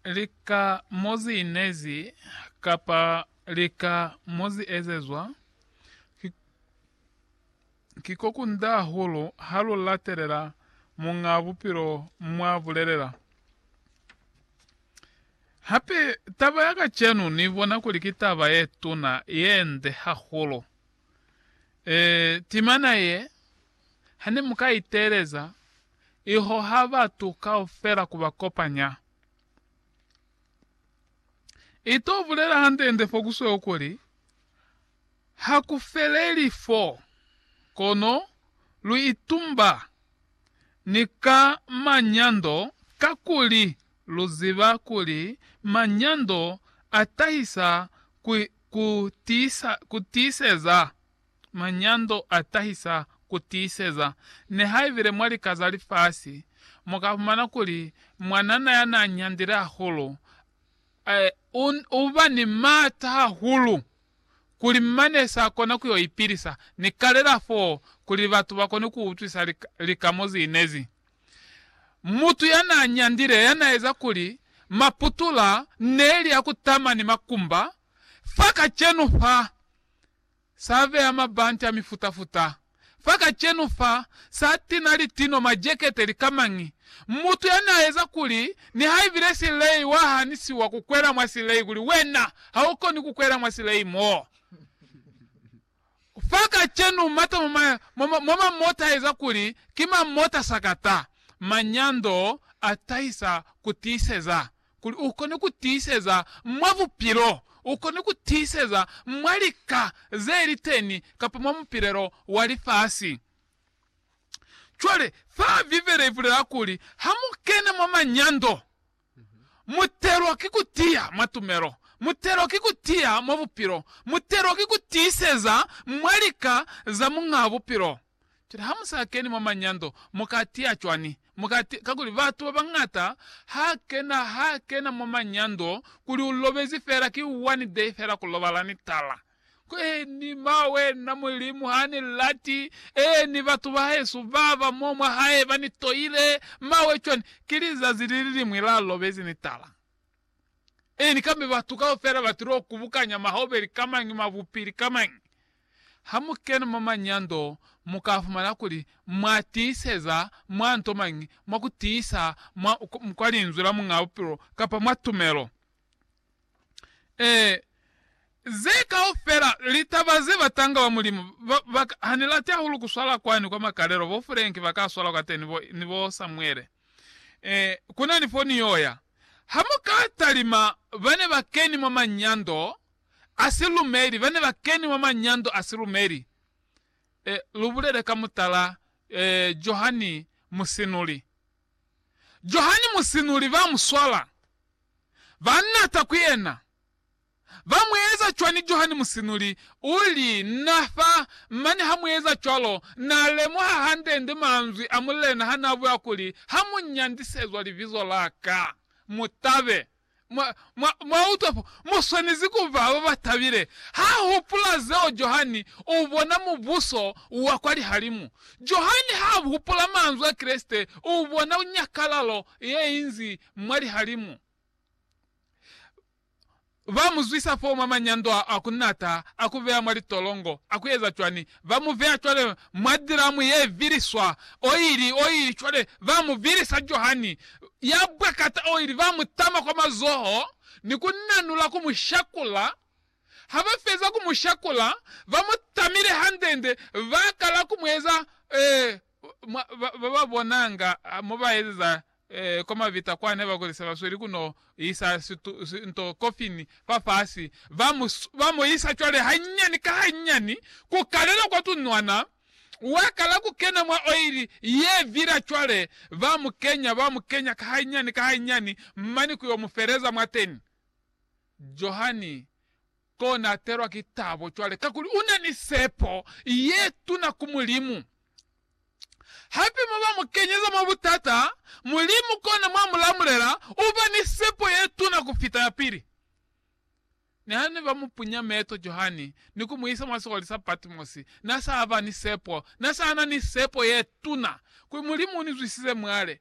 lika mo zi inezi kapa lika mo zi ezezwa, ki, ki ko kunda hahulu ha lu latelela Muñ'a Bupilo mwa bulelela. Hape taba ya kacenu ni bona kuli ki taba ye tuna, ye nde hahulu. E, timana ye, ha ne mu ka iteeleza, I hoha batu kaufela ku ba kopanya. I to bulela hande-nde fo ku sweu kuli, Ha ku feleli fo, kono lu itumba ni ka manyando kakuli lu ziba kuli manyando a tahisa ku tiiseza. Manyando a tahisa ku tiiseza. Nihaibile mwa lika za lifasi mu ka fumana kuli mwanana ya n'a nyandile hahulu u ba ni m'ata hahulu kuli mane s'a kona ku yo ipilisa ni kalela f'o kuli batu ba kone ku utwisa lika mo z'i inezi. Mutu ya n'a nyandile ya n'a eza kuli maputula ne li ya ku tama ni makumba fa kacenu fa Sa beya mabante a mifuta-futa. Fa kacenu fa, sa tina litino, majekete, likamañi. Mutu yani a eza kuli, nihaibile silei wa hanisiwa ku kwela mwa silei kuli, Wena, ha u koni ku kwela mwa silei mo. Fa kacenu, mata mwa ma, mwa ma, mwa mamota a eza kuli, ki mamota sakata. Manyando a tahisa ku tiiseza. Kuli u kone ku tiiseza mwa bupilo, u kone ku tiiseza mwa lika ze li teni kapa mwa mupilelo wa lifasi. Cwale, fa Bibele i bulela kuli ha mu kena mwa manyando, mu telwa ki ku tiya mwa tumelo, mu telwa ki ku tiya mwa bupilo, mu telwa ki ku tiiseza mwa lika za Muñaa Bupilo. Cwale ha mu sa keni mwa manyando, mu ka tiya cwani? Mu ka tiya, kakuli batu ba bañata ha kena, ha kena mwa manyando, kuli u lobezi fela ki one day fela ku lobala ni tala. Kweni, ma wena, Mulimu ha ni lati, ee, ni batu ba hesu ba ba mo mwa Hae ba ni toile, ma we cwani? Ki lizazi li li liñwi la lobezi ni tala. Ini kambe batu kaufela ba tilo kubukanya mahaubeli ka mañi, mabupili ka mañi? Ha mu kena mwa manyando, mu ka fumana kuli mwa tiiseza mwa nto mañi, mwa ku tiisa mwa, kwa Linzwi la Muñaa Bupilo, kapa mwa tumelo. Ee, ze kaufela litaba ze batanga ba Mulimu ba, ba ka. Ha ni lati hahulu ku swala kwani kwa makalelo, bo Fulenki ba ka swala kwateni, bo, ni bo Samuele. Eh, ku na ni foni yo ya. Ha mu ka talima ba ne ba keni mwa manyando a silumeli, ba ne ba keni mwa manyando a silumeli, eh, lu bulele ka mutala, eh, Johani Musinuli. Johani Musinuli ba mu swala, ba nata ku yena, Ba mu eza cwani Johani Musinuli u li, Na fa, mane ha mu eza cwalo, na lemuha hande-nde manzwi a Mulena ha na bula kuli, Ha mu nyandisezwa libizo la ka, mu tabe. Mwa, mwa, mwa utwa fo? Mu swanezi ku ba ba ba tabile. Ha hupula zeo Johani, u bona Mubuso wa kwa lihalimu. Johani ha hupula manzwi a Kreste, u bona nyakalalo ye inzi mwa lihalimu. ba mu zwisa foo mwa manyando a ku nata, a ku beya mwa litolongo, a ku eza cwani, ba mu veya cwale mwa diramu ye viliswa oili, oili, cwale ba mu vilisa Johani, ya bwakata oili, ba mu tama kwa mazoho, ni ku nanula ku mu shakula. Ha ba feza ku mu shakula, ba mu tamile hande-nde, ba kala ku mu eza, eh, mwa, ba, ba ba bonanga mo ba ezeza Kwa mabita kwa ne ba kolisa ba sweli ku no isa nto kofini fa fasi, ba mu, ba mu isa cwale hanyani ka hanyani ku kalela kwa tunwana. Wa kala ku kena mwa oili ye vila cwale, ba mu kenya, ba mu kenya ka hanyani ka hanyani, mane ku yo mu feleza mwateni. Johani Kona atelwa ki tabo cwale kakuli una ni sepo yetuna ku Mulimu. Hape moba mukenyeza mwa butata, Mulimu kona mwa mulamulela, uba ni sepo yetuna kufita yapili. Niha ne ba mupunya meto Johani ni kumuisa mwa sikoli sa Patmosi, na sa ba ni sepo, na sa na ni sepo yetuna kuli, Mulimu unizwisize mwale,